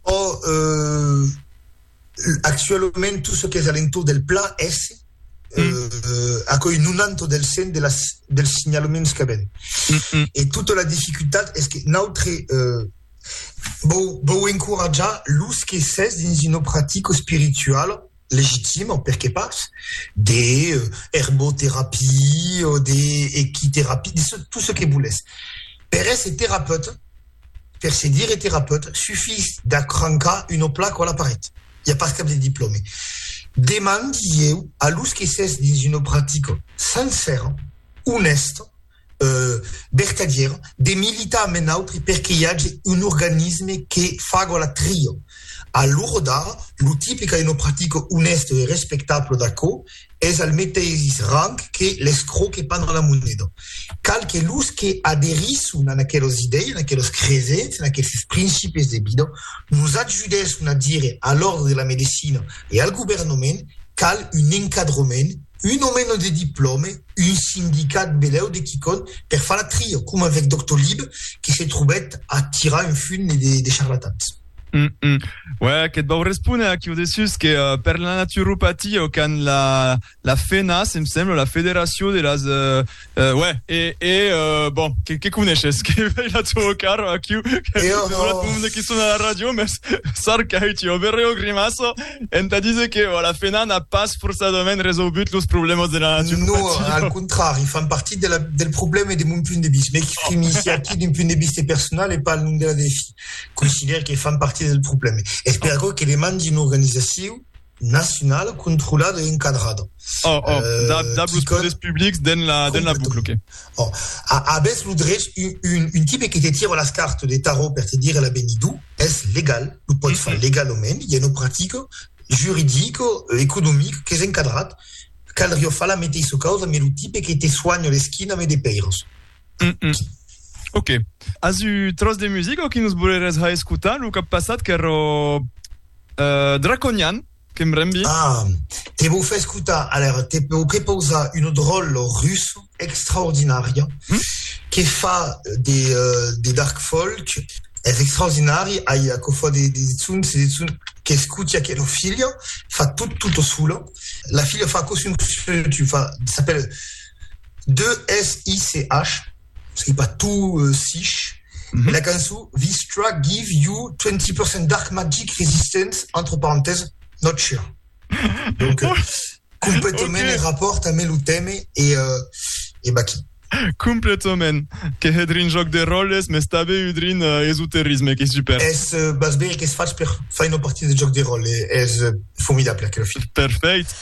Ò, actualament tot çò qu'es a l'entorn del pla es aquò'i 90 del 100 de las dels signalaments qu'avèm. E tota la dificultat es que nautre vòu vòu encoratjar los que s'es dins una practica espirituala, legitima, per qué pas, de herboterapie o de equiterapie, de ce, tot ce que volètz. Per èsser terapeute, per se dire terapeute, sufís d'acrancar una placa a la paret. I a pas cap de diplòme. Demandi-ieu a los que s'es dins una practica sencèra, onèsta, vertadièra de militar amb un autre perque i age un organisme que faga la tria. A l'ora d'ara, lo tipe qu'a una practica onèsta e respectabla d'aquò es al meteis rang que l'escròu que pana la moneda. Cal que los que aderisson a aquelas idèias, a aquelas cresenças, a aqueles principis de vida, nos ajudèsson a dire a l'òrdre de la medecina e al governament qu'al un encadrament, un o meno de diplòme, un sindicat belèu de quicòn per far la tria, coma avec Doctolib que se trobèt a tirar un fum de charlatans. Hum, hum. Uèi, que t vau respóner aquiu de sus que per la naturopatia o qu'an la la FENAS, em sembla, la Federacion de las Uè, e, e, bon, que, que coneishes? Que vei la tua cara aquiu? Que, e oh, oh. monde qui sona la radio, mes sarcai ti overe o grimasso, enta dise que oh, la fena n'a pas forçadament resolgut los problemas de la natura. No, al contrari, fan partit de la, del problème de mon punt de vista. Me exprime oh. ici aquí d'un punt de vista personal e pas al nom de la défi. Considère que fan partit del problème. Espero oh. que demandi una organisacion nacionala controlada e encadrada. Oh, oh, dab, dab los poders publics den la, den la boucle, ok. Oh, abès lo drech, un, un, un tipe que te tira las cartes de tarot per te dire l'avenidor, es legal, lo pot far legalament, i a una practica juridica, economica, qu'es encadrat, caldriá far la meteissa causa, me lo tipe que te soanha l'esquina me de peiras. Mm -mm. Ok. As un tros de musica o que nos voleres ha escutar? Lo cap passat qu'ero uh, Draconian, que em rembi. Ah, te vou fer escutar, alors te vou prepausar un drol russo extraordinària mm? que fa de, uh, de dark folk es extraordinari, ai a cofa de, de zun, se de zun che scuti a quello figlio, fa tutto, tutto solo. La figlia fa così un tu fa, s'appelle 2SICH, non sei pas, tu sich, la cançon Vistra give you 20% Dark Magic Resistance, entre parentèses, not sure. Donc, euh, completament okay. en rapport amb lo teme e, uh, e baqui. Completament. Que hedrin joc de roles, mes tabe udrin uh, esoterisme, que super. Es uh, bas beri que es faig per fai una partida de joc de role, es uh, formidable aquel film. Perfect.